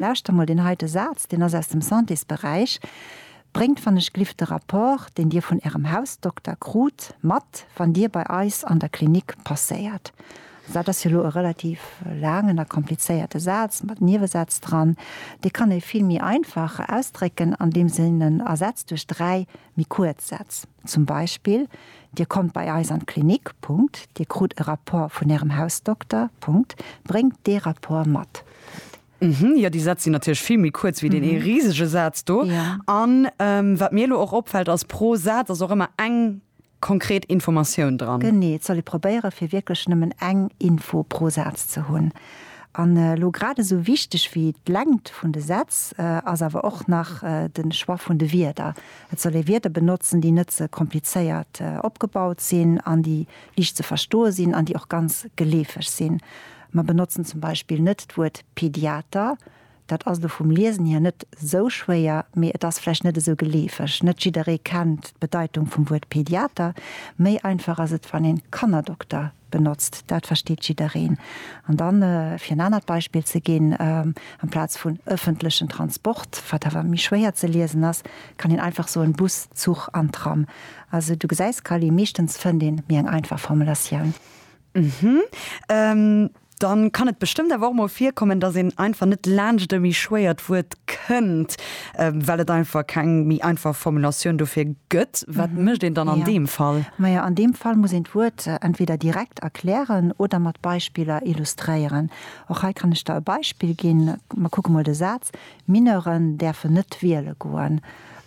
Lauschter mol deen heite Saz, deen ass aus dem Santésberäich, Bréngt wann ech glift de Rapport, deen Dir vun Ärem Hausdokter krut, mat, wann Dir bei eis an der Klinik passéiert. Also dat ass jo elo e relativ laangen a komplizéierte Saz mat Niewesätz dran. Dee kann ee vill méi einfach ausdrécken, andeems een en ersetzt duerch dräi méi kuerz Sätz. Zum Beispill, Dir kommt bei eis an d'Klinik. Punkt. Dir krut e Rapport vun Ärem Hausdokter. Punkt. Bréngt dee Rapport mat. Punkt. Mhm, jo, déi Sätz sinn natierlech vill méi kuerz wéi deen ee risege Saz do. An wat mir elo och opfält ass, pro Saz ass och ëmmer eng konkret Informatioun dran. Genee, et soll ee probéiere fir wierklech nëmmen eng Info pro Saz ze hunn. An elo grad esou wichteg wéi d'Längt vun de Sätz ass awer och nach de Choix vun de Wierder. Et soll ee Wierder benotzen, déi net ze komplizéiert opgebaut sinn an déi liicht ze verstoe sinn an déi och ganz geleefeg sinn. Mer benotzen zum Beispill net d'Wuert Pediater. Dat ass elo vum Liesen hier net esou schwéier, mee et ass vläicht net esou geleefeg. Net jidderee kennt d'Bedeitung vum Wuert Pediater. Méi einfach ass et, wann een Kannerdokter benotzt. Dat versteet jiddereen. An dann, fir en anert Beispill ze ginn, amplaz vun ëffentlechen Transport, wat awer méi schwéier ze liesen ass, kann een einfach soen Bus, Zuch an Tram. Also du gesäis, Callie, meeschtens fënnt een méi eng einfach Formulatioun. Ëhm, dann kann et bestëmmt awer och mol virkommen, dass een einfach net laanscht e méi schwéiert Wuert kënnt, well et einfach keng méi einfach Formulatioun dofir gëtt. Wat mécht een dann an deem Fall? Majo, an deem Fall muss een d'Wuert entweder direkt erklären oder mat Beispiller illustréieren. Och hei kann ech der e Beispill ginn. Mer kucke mol de Saz, Mineuren däerfen net wiele goen.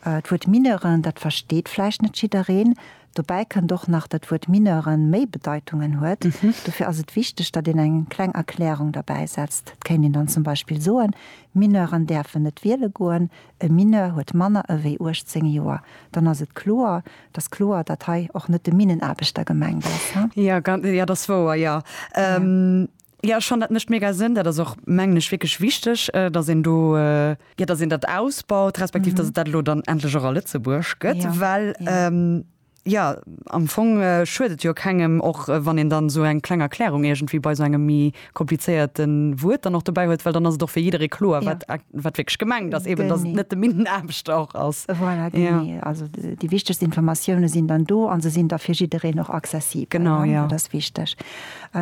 D'Wuert Mineuren, dat versteet vläicht net jiddereen, Dobäi kënnt och nach dat d'Wuert Mineuren méi Bedeitungen huet. Dofir ass et wichteg, datt een eng kleng Erklärung derbäi setzt. Et kéint een dann zum Beispill soen, Mineuren däerfen net wiele goen, e Mineur huet manner ewéi 18 Joer. Dann ass et kloer, datt kloer, datt hei och net de Minnenaarbechter gemengt ass. Jo, dat ass wouer, jo. Jo, ech fannen dat mécht mega Sënn. Dat ass och, mengen ech, wierklech wichteg, datt een do, jo, datt een dat ausbaut, respektiv datt et dat elo dann endlech och a Lëtzebuerg gëtt, well, jo, am Fong schuet et jo kengem, och wann een dann esou eng kleng Erklärung iergendwéi bei esou engem méi komplizéierte Wuert dann och dobäi huet, well dann ass et och fir jidderee kloer, wat wierklech gemengt ass, eben datt et net de Minnenaarbechter och ass. Voilà, genee. Also déi wichtegst Informatioune sinn dann do a se sinn da fir jiddereen och accessibel. Genau, jo. Dat ass wichteg.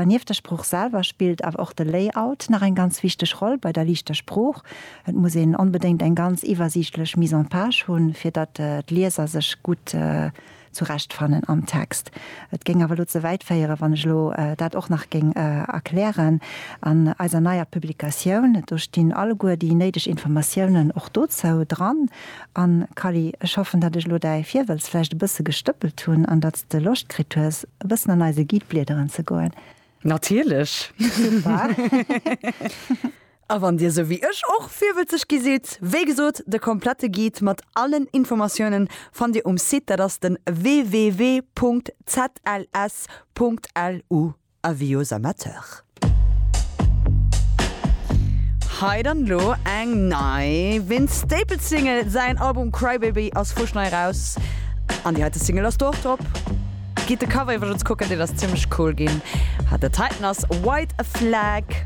Nieft der Sprooch selwer spillt awer och de Layout nach eng ganz wichteg Roll bei der liichter Sprooch. Et muss een onbedéngt eng ganz iwwersiichtlech Mise en page hunn, fir datt d'Lieser sech gutt zurecht fannen am Text. Et géing awer elo ze wäit féieren, wann ech elo dat och nach géing erklären. An eiser neier Publikatioun, do stinn alleguer déi néideg Informatiounen och dozou dran. An, Kally, ech hoffen, datt ech elo däi Virwëlz vläicht e bësse gestëppelt hunn an datt s de Loscht kritt hues, e bëssen an eise Guide bliederen ze goen. Natierlech! Super! A wann Dir, sou wéi ech, och virwëlzeg gi sidd, wéi gesot, de komplette Guide mat allen Informatiounen fannt Dir um Site, dat ass de www.zls.lu. Avis aux amateurs. Hei dann lo eng nei Vince Staples Single. Säin Album Crybaby ass fuschnei eraus an déi heite Single ass do och drop. Gitt de Cover iwwergens kucken, deen ass zimmlech cool ginn. Hat dat heiten ass White Flag.